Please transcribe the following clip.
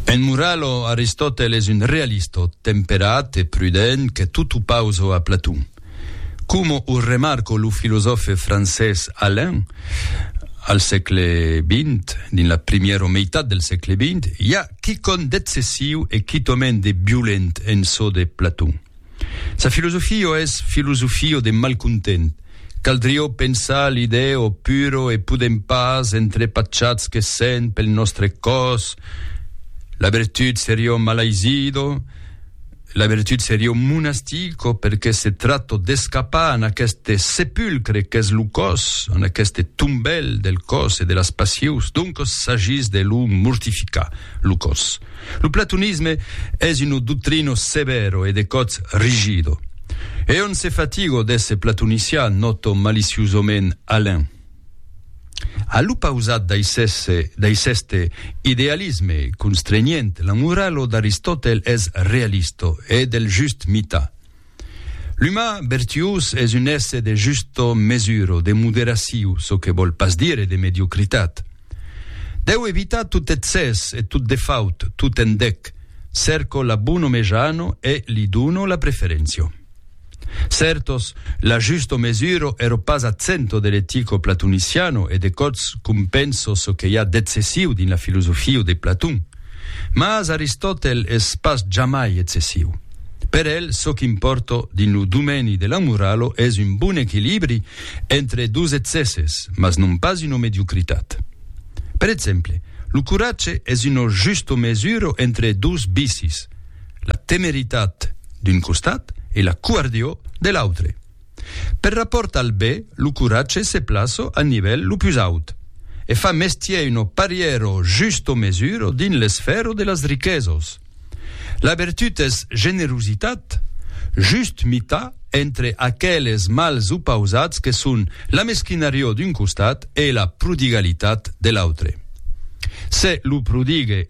En moralo, Aristòtel es un realistò temperat e prudent que tot o pauso a Platon. Coma o remarco lo filosòfe francés Alain, al sègle vint, dins la primièro meitat del sègle vint, i a quicòm d'excessiu e quitòment de violent en çò de Platon. Sa filosofio es filosofio de malcontent. Caldrió pensar l'idè o puro e podem pas entre pachats que sent pel nòstre còs, la vertut serió malaizido, la vertut serió monastico perque se trato d'escapar en aqueste sepulcre qu'es lo còs, en aqueste tombèl del còs e de las passius, doncos s'agís de lo mortificar, lo còs. Lo platonisme es uno doctrino severo e de còts rigido. E on se fatigo d'èsser platonician, nòto maliciosament Alain. A l'opausat d'aiceste idealisme constrenhent, l'amoralo d'Aristòtel es realisto e del just mitar. L'umà bertiós es un èsser de justa mesura o de moderaciu, çò que vòl pas dire de mediocritat. Deu evitar tot excès e tot defaut, tot endec, cèrco la bona mejana e li dono la preferéncia. Certos, la justa mesura ero pas ath centre de l'etica platoniciana e de còps compenso çò que i a d'excessiu dins la filosofia de Platon. Mas Aristòtel es pas jamai excessiu. Per el, çò qu'impòrta dins lo domèni de la morala es un bon equilibri entre dos excèsses, mas non pas una mediocritat. Per exemple, lo coratge es una justa mesura entre dos vicis, la temeritat d'un costat e la covardior de l'autre. Per rapòrt al be, lo coratge se plaço a nivèl lo pus aut, e fa mestier uno parièr o just o mesuro dins l'esfèro de las riquesos. La vertut es generositat, just mitar entre aqueles mals opausats que son la mesquinarior d'un costat e la prodigalitat de l'autre. Se lo prodigue